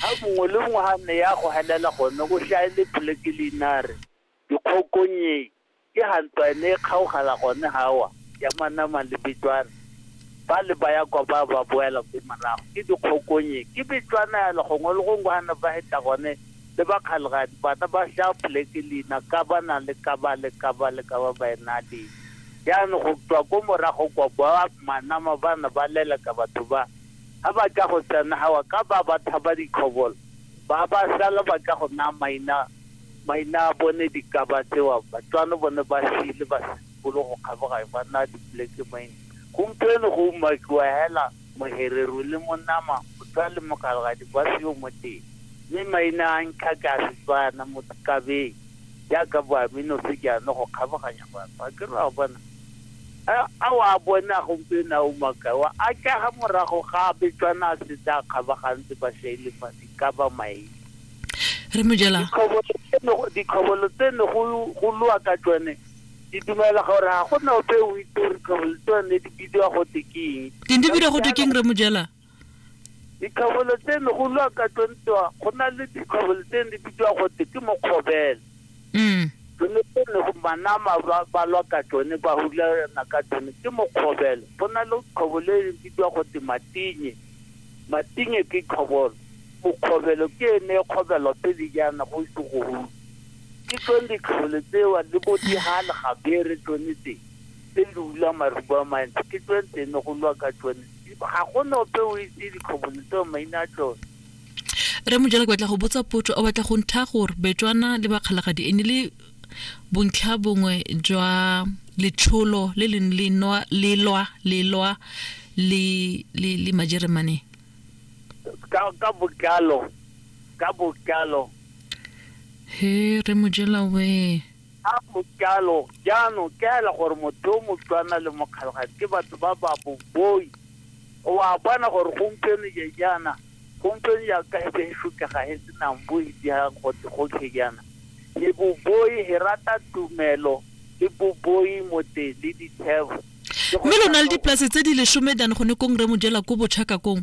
Ha mongwe le mongwe ha a ne ya go helela gone, go hlaele poleke leinare, dikgokonye, ke ha ntwa e ne e kgaogela gone hawa, ya manama le Betswana. Ba le ba ya kwa ba ba boela ko morago, ke dikgokonye, ke Betswana yalo, gongwe le gongwe ha ne ba heta gone, le ba Kgalegadi ba na ba hlaya poleke leina, Kaba na le Kaba le Kaba le Kaba ba e na le. Jaanong go tswa ko morago kwa, ba manama ba ne ba leleka batho ba, ha ba tla go tsenawa ka ba ba thaba dikhobola, ba ba sala ba tla go naya maina maina a bone di ka ba tsewa, batswano bone ba sile ba se simolo go kgaboga e ba naya dipoleke maina. Gompieno go umakiwa hela mohereru le monama, motswa le mogalgadi ba seyo mo teng, mme maina a ntlha ke a Setswana, Motikabeng, jaaka Boaminosi jaana go kgaboganya batho. A ke re o a bona? A, a o a bona gompieno a umakae? Wa atlega morago ga abetswana a setse a kgabagantse bašaile fale, e ka ba mae. Rre Mojela. Ditlhobolo tse ne go, ditlhobolo tse ne go, go lwa ka tsone, di dumela gore ga go na ope o itse gore ditlhobolo tseo ne di bidiwa go te ke eng. Di ne di bidiwa go te ke eng, Rre Mojela? Dikgabolo tse ne go lwa ka tlontwa go na le dikgabolo tse ne di bidiwa gote ke mokgobele mm. tsone tse ne go manama ba ba lwa ka tsone ba hulana ka tsone ke mokgobele go na le kgobolo e ne bidiwa gote matinye matinye ke kgobolo mokgobelo ke ene e kgobelo pele jaana go ise go hula ke tsone dikgabolo tsewa le bo digale gabere tsone tse tse di hula maruba a mantsi ke tsone tse ne go lwa ka tsone Ga go na ope o itse dikgobolo tseo maina a tsone. Rre Mojela ke batla go botsa potso o batla go ntha gore Betswana le Bakgalagadi e ne le bontlha bongwe jwa letsholo le leng le nwa le lwa le lwa le le le Majeremane. Ka ka botlalo ka botlalo. He Rre Mojela we. Ga go jalo, jaanong ke hela gore motho yo motlwana le mokgalogadi ke batho ba ba boboi. O a bona gore gompieno je jaana, gompieno ya ka e se e shokega e senang bo e dira gote gotlhe jaana. Le boboi he rata tumelo, le boboi mote le dithebo. Mme lo na le dipolase tse di lesome dan gone kong Rre Mojela ko Bochaka kong?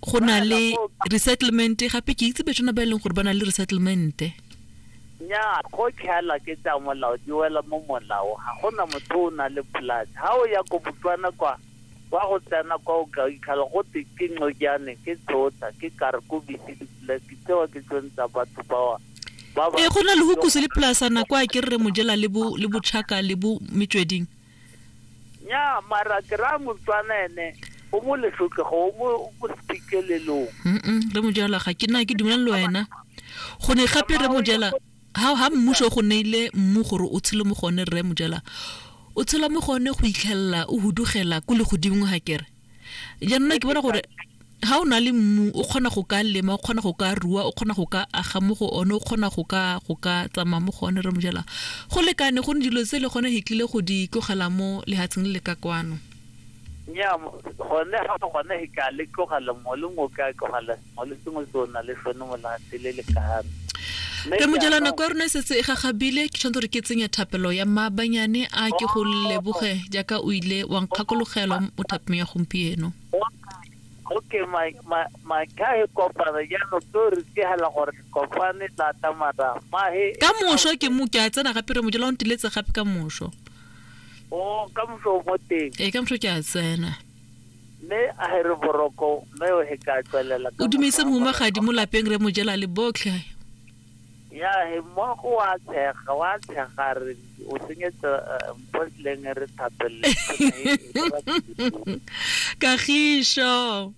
go na le resettlement gape ke itse betsona ba e leng gore ba na le resettlement nya go tlhaela ke tsa molao di wela mo molao ga gona motho o na le polase ga o ya ko botswana kwa wa go tsena kwa o ka ikhala go te ke nqojane ke tsota ke kare ko bisi dipolase tseo ke tsone tsa batho bawa ee go na le go kuse le polasana kwa ke re mojela le botšhaka le bo metsweding nya mara ke raya motswana ene o mo leshotlego o mo o mo sephikelelong Mm-mm, re mojala ga ke na ke dumelane le wena go ne gape re mojala ha ha mmuso go neile mmu gore o tshele mo gone rre mojala o tshela mo gone go itlhelela o hudugela ko legodimong ga kere jaanong ke bona gore ga o na le mmu o kgona go ka lema o kgona go ka rua o kgona go ka aga mo go one o kgona go ka go ka tsamaya mo go one re mojala go lekane go ne dilo tse le gone he tlile go di tlogela mo lehatsheng le le ka kwano nya gone ga gone he ka le tlogela mo le ngo ka tlogela molwetse mongwe ke o na le sone molatse le lekano re mojela nako ya rona e setse e gagabile ke tshwanetse gore ke tsenya thapelo ya maabanyane a ke go leboge jaaka o ile wa nkgakologelo mo thapong ya gompieno okay my my my guy kopana jaanong ke re tihela gore kopane lata mara mahe ka moso ke mo ke a tsena gape re mojela o ntiletse gape ka moso o ka moso mo teng ee ka moso ke a tsena mme a here boroko mme o he ka tswelela o dumeise mohumagadi mo lapeng re mojela le botlhe ya he mmogo wa tshega wa tshega re o senyetsa eh, mpotleng re thapelele kagišo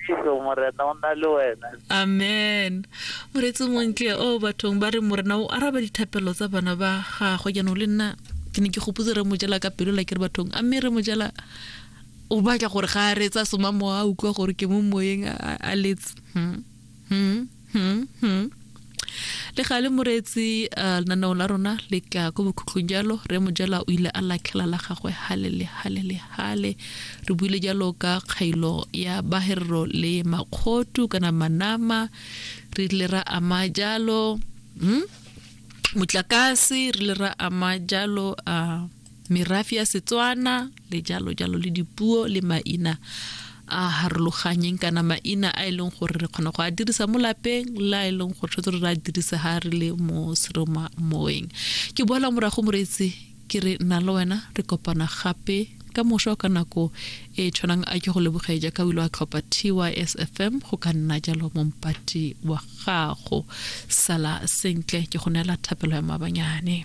Setso morena o na le wena. amen moreetsi o montle o bathong ba re morena o araba dithapelo tsa bana ba gagwe jaanong le nna ke ne ke gopotse re mojela ka pelo la ke re bathong a mme re mojela o batla gore ga a reetsa soma mowa a utlwa gore ke mo moyeng a- a- a letse Hmm. Hmm. Hmm, hmm. le ga le moreetsi uh, lenaneo la rona le tla ko bokhutlong jalo re mojala o ile a latlhela la gagwe hale le hale le hale re buile jalo ka kgailo ya baherero le makgotu kana manama re ile ra ama jalo hmm? motlakase re ile ra ama jalo uh, merafe ya Setswana le jalo jalo le dipuo le maina a harologanyeng kana maina a e leng gore re kgona go a dirisa mo lapeng la e leng gore tshwanetse re a dirisa ga re le mo seroma moeng ke boela morago moreetsi ke re nna le wena re kopana gape ka mošwa ka nako e tshwanang a ke go lebogeng jaaka o ile wa tlhopha tysfm go ka nna jalo mompati wa gago sala sentle ke go neela thapelo ya mabanyane